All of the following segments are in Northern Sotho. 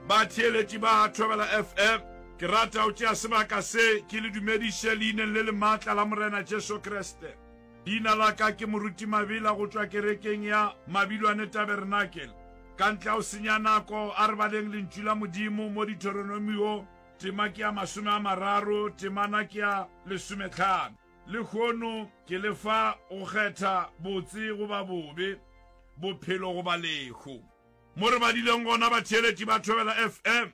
Batheeletši ba Thobela FM, ke rata go tšea sebaka se ke le dumediše Leineng le lemaatla la Morena Jesu Kriste. Leina la ka ke Moruti Mabila go tšwa kerekeng ya Mabilwane Tabernacle. Ka ntle ga go senya nako, a re baleng Lentšu la Modimo mo Dithoronomiong, tema ke ya masome a mararo, temana ke ya lesometlhano. Lehono ke le fa go kgetha botse goba bobe, bophelo goba lehu. Mo re badileng gona, batheeletši ba Thobela FM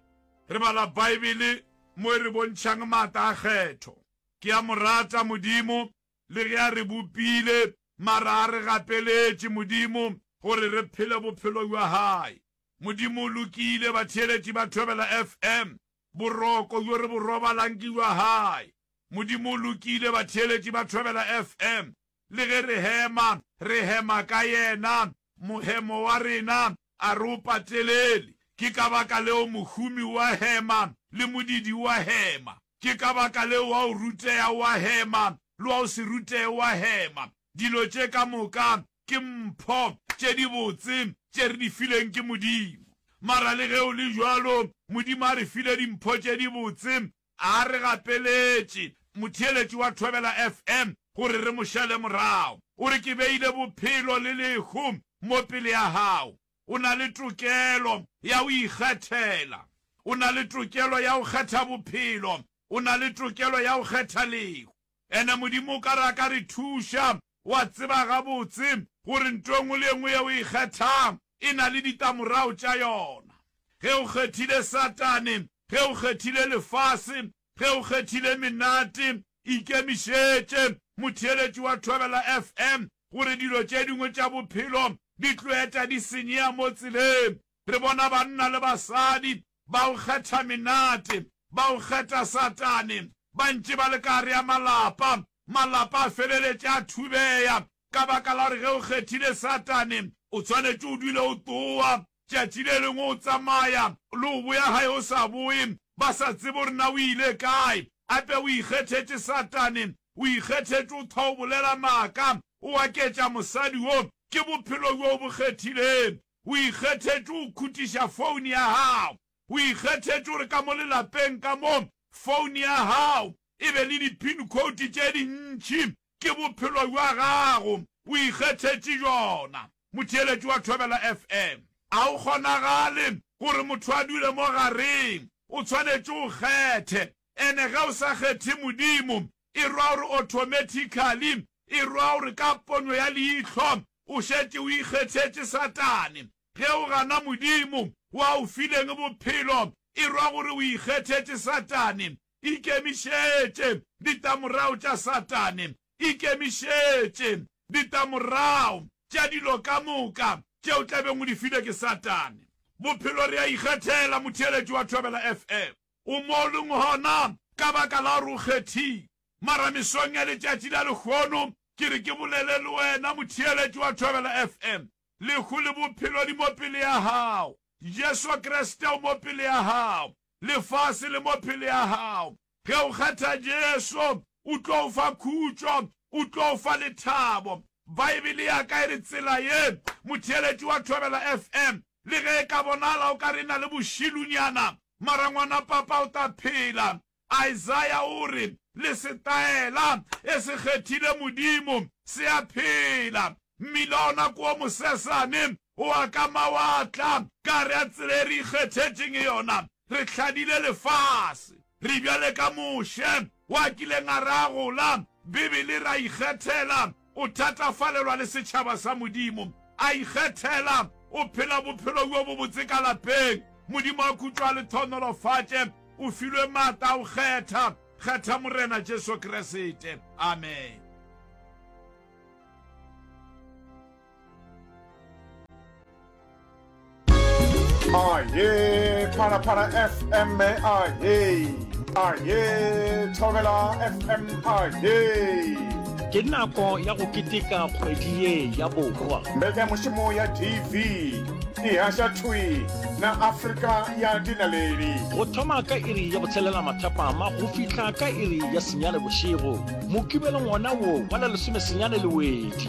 re bala Baebele mo e re bontšhang maatla a kgetho. Ke a mo rata Modimo le ge a re bopile, mara a re gapeletše Modimo gore re phele bophelo bja Hae. Modimo o lokile, batheeletši ba Thobela FM, boroko bjo re bo robalang ke bja Hae. Modimo o lokile, batheeletši ba Thobela FM, Le ge re hema, re hema ka Yena. Mohemo wa rena a re o patelele. Ke ka baka leo mohumi o a hema, le modidi o a hema. Ke ka baka leo wa go rutea o a hema, le wa go se rutee o a hema. Dilo tše ka moka ke mpho tše dibotse tše re di fileng ke Modimo. Mara le ge go le bjalo, Modimo a re file dimpho tše dibotse A re gapeletše motheeletši wa Thobela FM gore re mo šale morago. O re, Ke beile bophelo le lehu mo pele ya gago. O na le tokelo ya go ikgethela. O na le tokelo ya go kgetha bophelo. O na le tokelo ya go kgetha lehu. Ene Modimo o ka re a ka re thuša. O a tseba gabotse gore nto e nngwe le e nngwe yeo o e kgethang e na le ditamorago tša yona. Ge o kgethile Satane, ge o kgethile lefase, ge o kgethile menate, ikemišetše, motheeletši wa Thobela FM, gore dilo tše dingwe tša bophelo di tlo eta di senyea mo tseleng. Re bona banna le basadi ba go kgetha menate, ba go kgetha Satane, ba ntše ba le ka gare ya malapa, malapa a feleletše a thubeya ka baka la gore ge o kgethile Satane o swanetše o dule o tsowa tšatši le lengwe o tsamaya le o boya gae o sa boye ba sa tsebe gore na o ile kae. Gape o ikgethetše Satane, o ikgethetše o thwa o bolela maaka, o aketša mosadi wo, ke bophelo bjo o bo kgethilego. O ikgethetše go khutiša foune ya gago. O ikgethetše gore ka mo lelapeng ka mo, foune ya gago e be le di-pin code tše dintši. Ke bophelo bja gago. O ikgethetše bjona. Motheeletši wa Thobela FM, A go kgonagale gore motho a dule mo gareng. O tshwanetše o kgethe. Ene ge o sa kgethe Modimo, E rwa gore automatically, e rwa gore ka pono ya leihlo, o šetše o ikgethetše Satane. Ge o gana Modimo, wo a o fileng bophelo, e rwa gore o ikgethetše Satane. Ikemišetše ditamorago tša Satane. Ikemišetše ditamorago tša dilo ka moka tše o tla beng o di filwe ke Satane. Bophelo re a ikgethela, motheeletši wa Thobela FM. O mo leng gona, ka baka la gore o kgethile. Mara mesong ya letšatši la lehono, ke re ke bolele le wena, motheeletši wa Thobela FM. Lehu le Bophelo di mo pele ya gago. Jesu Kriste o mo pele ya gago. Lefase le mo pele ya gago. Ge o kgetha Jesu, O tlo o fa khutšo, O tlo o fa lethabo. Baebele ya ka e re tsela ye. Motheeletši wa Thobela FM, Le ge e ka bonala o ka re e na le bošilunyana, mara ngwana Papa o tla phela. Isaiah o re, Le setaela e se kgethile Modimo se a phela. Mmila ona ke o mosesane, Wa ka mawatla, ka re a tsela e re ikgethetšeng yona, re hladile lefase. Re bjale ka Moshe, wa kileng a re a gola, Bibele e re a ikgethela, o thatafalelwa le setšhaba sa Modimo. A ikgethela, o phela bophelo bjo bobotse ka lapeng. Modimo a khutšo a le thonolofatše. O filwe maatla a go kgetha. Kgetha Morena Jesu Kriste. Amen. aye phalaphala fm aye aye thobela fm aye ke nako ya go keteka kgwedi ye ya borwa mbeka mošomo ya tv e haša thwi na afrika ya dinaledi go thoma ka iri ya go tshelela mathapama go fihla ka iri ya senyane bošego mokibelong wona wo wa la lesomesenyane lewedi